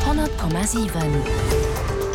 100,7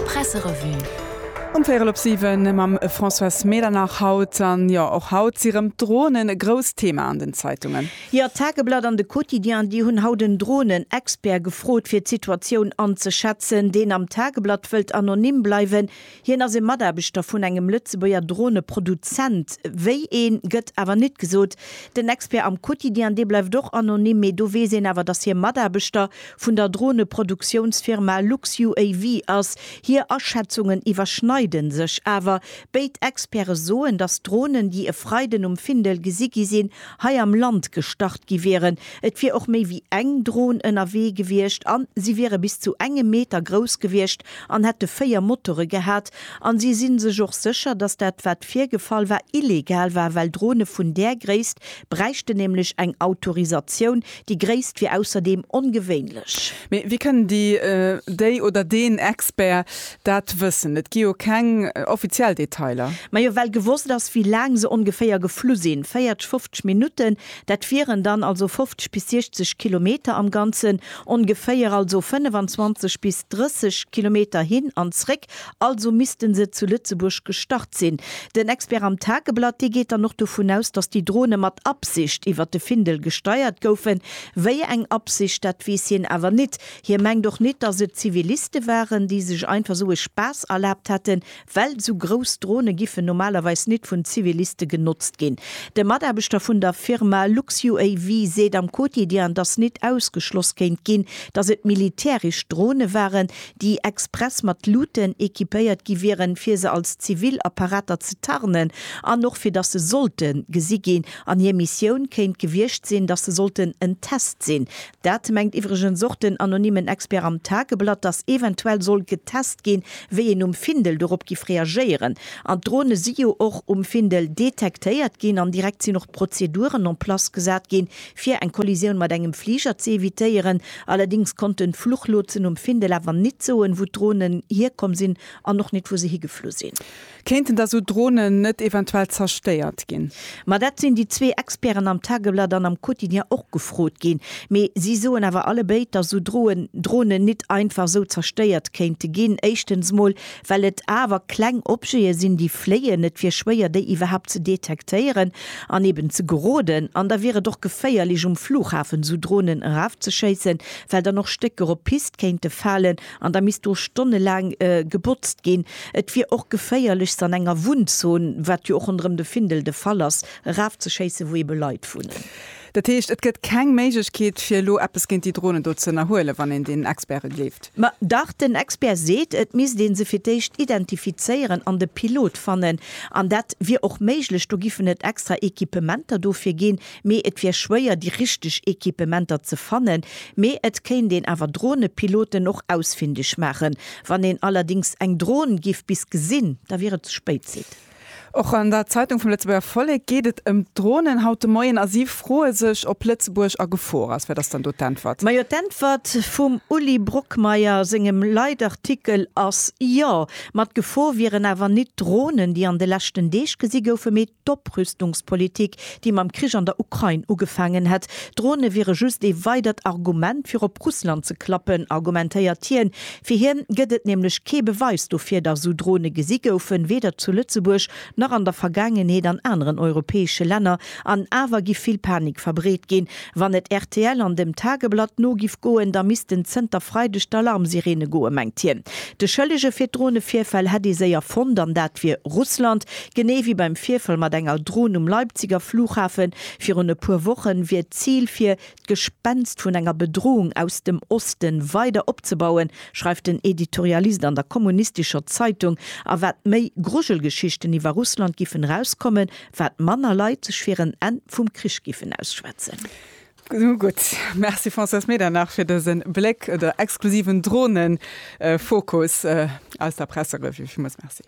Presserevue. Um véierel op siwen mam Françoise Medernach haut. An jo, och haut si rëm d'Dronen e grousst Thema an den Zeitungen. Jo, d'Tageblatt an de Quotidien, déi hunn haut en Dronen-Expert gefrot fir d'Situatioun anzeschätzen. Deen am Tageblatt wëllt anonym bleiwen, Hien ass e Mataarbechter vun engem Lëtzebuerger Droneproduzent. Wéi een, gëtt awer nit gesot. Den Expert am Quotidien, dee bleift och anonym, mee do weess een awer, datt hie Mataarbechter vun der Droneproduktiounfirma LuxUAV ass. Hir Aschätzungen iwwerschneide sech awer. Béid Experte soen, datt d'Dronen, déi e Freiden um Findel gesi gi sinn, hei am Land gestart gi wieren. Et wier och méi wéi eng Dron ënnerwee gewiescht an si wiere bis zu engem Meter grouss gewiescht, an hätte véier Motore gehat, an si sinn sech och sécher, datt dat wat virgefall war illegal war, well Drone vun där Gréisst bräichten nämlech eng Autorisatioun, déi Gréisst wier ausserdeem ongewéinlech. Mee wéi kënnen déi, déi oder deen Expert dat wëssen? Et gi jo keng offiziell Detailer. Majo well gewosst ass wéi laang se ongeféier geflu sinn, 40, 50 Minutten. Dat wieren dann also 50 bis 60 Kilometer am Ganzen, ongeféier also 25 bis 30 Kilometer hin an zréck, also misste se zu Lëtzebuerg gestart sinn. Den Expert am Tageblatt, dee geet dann och dovun aus, datt déi Drone mat Absicht iwwert de Findel gesteiert goufen. Wéi eng Absicht, dat weess hien awer nit. Hie mengt och nit, datt et Ziviliste waren, déi sech einfach sou e Spaass erlaabt hätten, Well sou grouss Drone giffen normalerweis nit vun Ziviliste genotzt ginn. De Mataarbechter vun der Firma LuxUAV seet am Quotidien, datt nit ausgeschloss kéint ginn, datt et militäresch Drone waren, déi express mat Luuten equipéiert gi wieren, fir se als zivil Apparater ze tarnen an och fir datt se sollte gesi ginn. An hir Missioun kéint gewiescht sinn, datt se sollten en Test sinn, Dat mengt iwwregens och den anonymen Expert am Tageblatt, datt eventuell soll getest ginn, wéi een um Findel dorop giff reagéieren. An d'Drone si jo och um Findel detektéiert ginn an direkt sinn och d'Prozeduren en place gesat ginn, fir eng Kollisioun mat engem Fliger ze evitéieren. Allerdings konnten d'Fluchlotsen um Findel awer nit soen, wou d'Dronen hierkomm sinn an och nit, wou se higeflu sinn. Kéinten da sou Dronen net eventuell zerstéiert ginn? Ma dat sinn déi zwee Experten am Tageblatt an am Quotidien och gefrot ginn. Mee si soen awer alle béid, datt sou Dronen nit einfach sou zerstéiert kéinte ginn. Éischtens mol, well et awer kleng Objete sinn, déi fléien. Et wier schwéier, déi iwwerhaapt ze detektéieren an eben ze geroden. An da wier et och geféierlech, um Flughafen sou Dronen erafzeschéissen, well dann och Stécker op d'Pist kéinte falen. An da misst do stonnelaang gebotzt ginn. Et wier och geféierlech, se an enger Wunnzon, wat jo och ronderëm de Findel de Fall ass, erafzeschéissen, wou ebe Leit wunnen. Dat heescht, et gëtt keng Méiglechkeet, fir elo eppes géint déi Dronen do ze ënnerhuelen, wann een deenen Experte gleeft? Ma dach, den Expert seet, et misst ee se fir d'éischt identifizéieren an de Pilot fannen. An dat wier och méiglech, do giffen et extra Equipementer dofir ginn. mee et wier schwéier déi richteg Equipementer ze fannen, mee et kéint een awer Dronepiloten och ausfindeg maachen. Wann een allerdings eng Dron giff bis gesinn, da wier et ze spéit, seet en. Och an der Zeitung vum Lëtzebuerger Vollek geet et ëm d'Dronen haut de Moien a si froe sech, ob Lëtzebuerg a Gefor ass. Wat ass dann do d'Äntwert? Majo, d'Äntwert vum Uli Brockmeyer a sengem Leitartikel ass, Jo, mat Gefor wieren awer nit d'Dronen, déi an de leschten Deeg gesi goufen, mee D'Oprüstungspolitik, déi mam Krich an der Ukrain ugefaangen hätt, Drone wiere just ee weidert Argument fir op Russland ze klappen, argumentéiert hien. Fir hien gëtt et nämlech kee Beweis dofir, datt esou Drone gesi goufen, weder zu Lëtzebuerg nach an der Vergaangenheet an aneren europäesche Länner. An awer gi vill Panik verbreet ginn, Wann et rtl an dem Tageblatt no giff goen, da missten zënter Freideg d'Alarmsireene goen, mengt hien. De Schëllege fir d'Dronevirfäll hätt ee séier fonnt, an dat wier Russland. Genee wéi beim Virfall mat enger Dron um Leipziger Flughafe virun e puer Wochen, wier d'Zil fir d'Gespenst vun enger Bedroung aus dem Oste weider opzebauen, schreift den Editorialist an der kommunistescher Zeitung. A wat méi Grujelgeschichten iwwer Russland giffen erauskommen, wat manner Leit sech fir en Enn vum Krich giffen ausschwätzen. Nu gutt, Merci Françoise Medernach fir dëse Bléck oder exklusiven Dronefokus aus der Presserevue. Villmools Merci.